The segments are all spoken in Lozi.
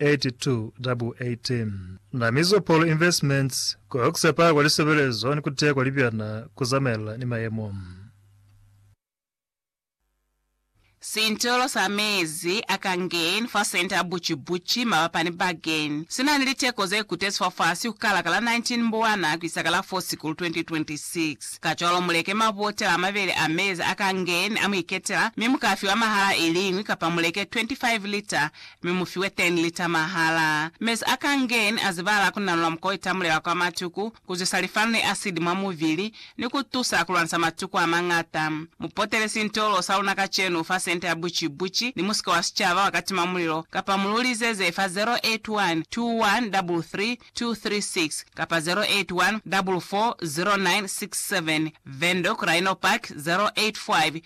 8218 Na Mizopol Investments ku Oxepa kwa Lisebelezo ni ku Teya kwa Libyana ku Zamaelana ni Mayemo. Sintolo sa mezi a Kangen fa senta ya Buci-Buci, mabapa ni Bagen, si na ni liteko ze kutezi fafasi ku kala ka la 19 Mbwana ku isa ka la 4 Sikulu 2026. Kacwalo mu leke mabotela a mabeli a mezi a Kangen a mu iketela, mi mu ka fiwa mahala i liñwi kapa mu leke 25 lita Mi mu fiwe teni lita mahala. Mezi a ka ngeni a zibala ku nanula mukwa itamulela kwa matuku, ku zwisa lifanu ni asidi mwa muvili, ni ku tusa ku lwanisa matuku a mañata. Mu potele sintolo sa luna kacenu fa senta ya buci buci ni musika wa sicaba wa katima mulilo, kapa mu lu lizeze fa 0812133236 kapa 0814409670 Vendo, Rhino Park, 085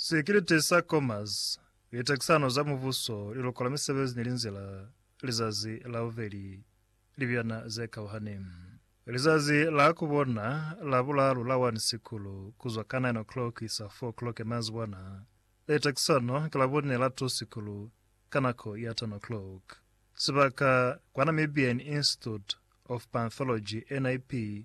Sikiliti sa Commerce, Litekisano za Mubuso, Lilokola Misebezi ni Linzila, Lizazi la Bubeli, Libiyana ze Kauhani. Lizazi la ku bona la bulalu la 1 Sikulu, ku zwa ka 9 o'clock isa 4 o'clock manzibwana. Litekisano ki la bune la 2 Sikulu, ka nako ya 10 o'clock. Sibaka, kwa Namibian Institute of Panthology, NIP,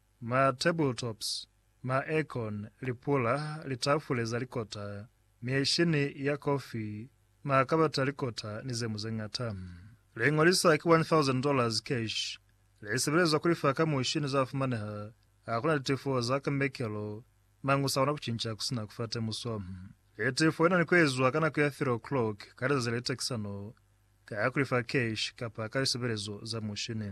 Ma tabletops, ma aircon, lipula, litafule za likota, mieshini ya kofi, ma kabata a likota ni ze mu ze ñata. Liñolisa ki $1,000 cash, li sebelezwa ku lifa ka mushi ni za fumaneha, ha ku na litefo za ka mekelo, mañi u sa kona ku cinca ku si na ku fa temuso. Litefo li na ni ku ezwa ka nako ya 3 o'clock ka lizazi le litekisano, ka ku lifa cash kapa ka lisebelezo za mushini.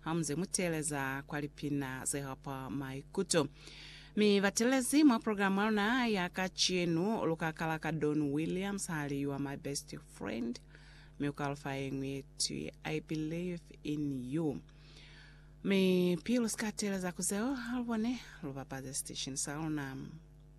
Hamuze mu teeleza kwa lipina ze hapa maikuto, mi batelezi mwa program ya luna ya kacenu, lu ka kala ka Don Williams ha li You Are My Best Friend, mi u ka lu fa yeñwi ye twi I Believe in You. Mi pili lu si ka teeleza ku zeo, ha lu bone lu bapaze station sa luna.